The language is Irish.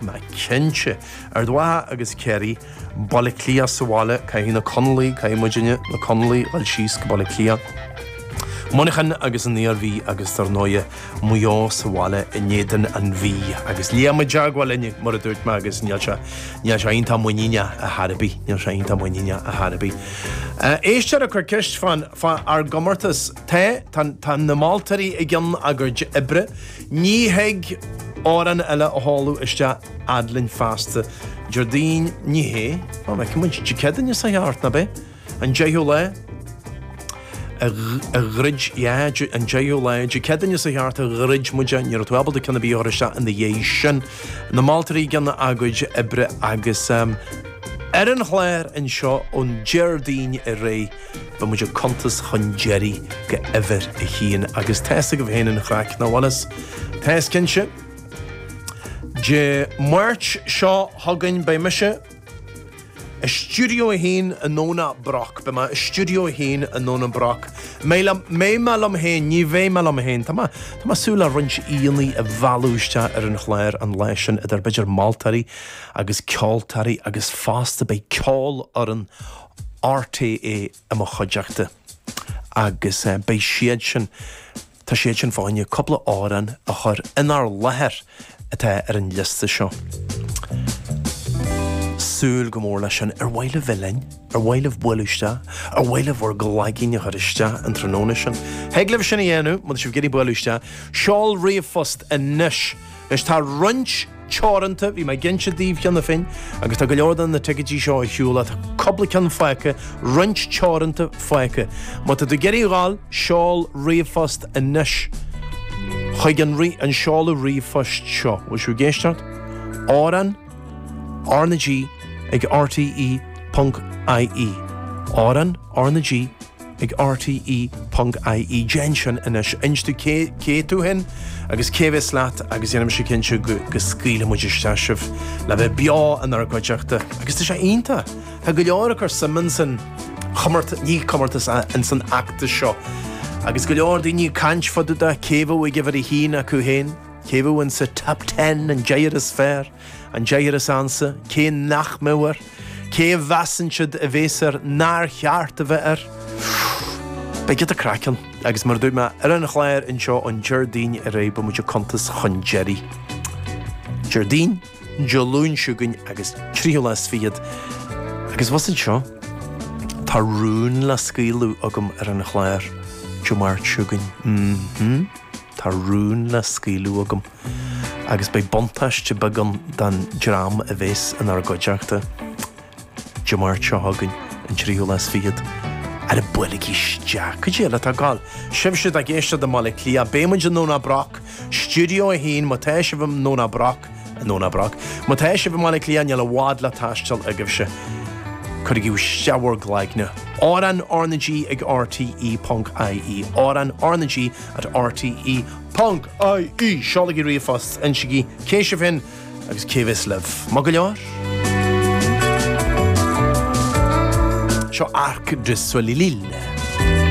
Nach cinnte! Ard Mhacha agus Ciarraí, Baile Átha Cliath sa bhaile, caithfidh na Conallaigh, caithfidh muidinne, na Conallaigh, dul síos go Baile Átha Cliath, Muineachán agus an Iarmhí agus dar ndóighe, Maigh Eo sa bhaile in éadan an Mhí. Agus Liam i dteagmháil linn, mar a dúirt mé agus níl sé, níl sé iontach muiníneach ar chor ar bith. Éisteoir ag cur ceist fán, fá ár gcomórtas, tá, tá, tá na moltóirí i gcionn a gcuid oibre, Ní thig amhrán eile a sheoladh isteach fhad linn feasta. Déardaoin, Ní hé, á, feiceann muid, Dé Céadaoin seo thart, nach ea? An deichiú lá, a, a dhruid, yeah, Dé, an deichiú lá, Dé Céadaoin seo thart a dhruid muid é, ní raibh tú ábalta ceann ar bith a chur isteach ina dhiaidh sin. Na moltóirí ag déanamh a gcuid oibre agus, em, ar an chlár anseo ón Déardaoin ar aghaidh, Beidh muid ag cuntas chun deiridh go uimhir a haon agus tá fhios agaibh féin an chraic, nach bhfuil fhios? Tá fhios cinnte. Dé Máirt seo chugainn beidh mise i Stiúideo a hAon i nDomhnach Broc, beidh mé i Stiúideo a hAon i nDomhnach Broc, mbeidh mé liom féin, ní bheidh mé liom féin, tá mé, tá mé ag súil le roinnt aíonna a mhealladh isteach ar an chlár an lá sin idir b'fhéidir moltóirí agus ceoltóirí agus fosta beidh Ceolfhoireann RTÉ i mo chuideachta agus beidh siad sin, tá siad sin fá choinne cúpla amhrán a chur inár láthair atá ar an liosta seo. Súil go mór leis sin. Ar mhaith libh a bheith linn? Ar mhaith libh bualadh isteach? Ar mhaith libh bhur gcloigín a chur isteach an tráthnóna sin? Thig libh sin a dhéanamh, má tá sibh ag iarraidh bualadh isteach. Seol ríomhphost anois! Anois tá roinnt teoranta, bhí mé ag inse daoibh cheana féin, agus tá go leor de na ticéidí seo ar shiúl, tá cupla ceann fágtha, roinnt teoranta fágtha. Má tá tú ag iarraidh iad a fháil, seol ríomhphost anois chuig an an seoladh ríomhphoist seo. Bhfuil sibh ag éisteacht? Amhrán RnaG ag RTÉ.ie, Amhrán RnaG ag RTÉ.ie. Déan sin anois. Inis dúinn cé tú fhéin agus cé bhéas leat agus dhéanfaidh mise cinnte go scaoilfidh muid isteach sibh le bheith beo inár gcuideachta agus tá sé iontach. Tá go leor ag cur suim insan, ní comórtas, insan fheachtas seo agus go leor daoine ag caint fá dtaobh de cé bheadh ag uimhir a haon acu féin, cé bheadh insa Top Ten, an deichniúr is fearr. An deichniúr is ansa cé nach mbeidh air, cé a mheasann siad a bhéas air nár cheart a bheith air? Beidh giota craic ann agus mar a dúirt mé ar an chlár anseo ón Déardaoin ar aghaidh beidh muid ag cuntas chun deiridh. Déardaoin, Dé Luain seo chugainn agus tríú lá is fichead agus abhus anseo tá rún le scaoileadh agam ar an chlár Dé Máirt seo chugainn. M-hm, tá rún le scaoileadh agam. agus beidh buntáiste beag ann don dream a bhéas inár gcuideachta Dé Máirt seo chugainn, an 3ú lá is fichead. Ara buailigí isteach, cuid eile atá ag goil! Sibhse atá ag éisteacht i mBaile Átha Cliath, beidh muid i nDomhnach Broc, Studio 1, má tá sibh i nDomhnach Broc, i nDomhnach Broc. Má tá sibh i mBaile Átha Cliath, níl i bhfad le taisteal agaibhse, cuirigí isteach bhur gcloigne! Amhrán RnaG ag RTÉ ponc IE, amhrán RnaG at RTÉ. Ponc, IE, Seolaigí ríomhphost, insigí cé sibh féin agus cé a bheas libh. Maith go leor. Seo Arc de Soleil Lille.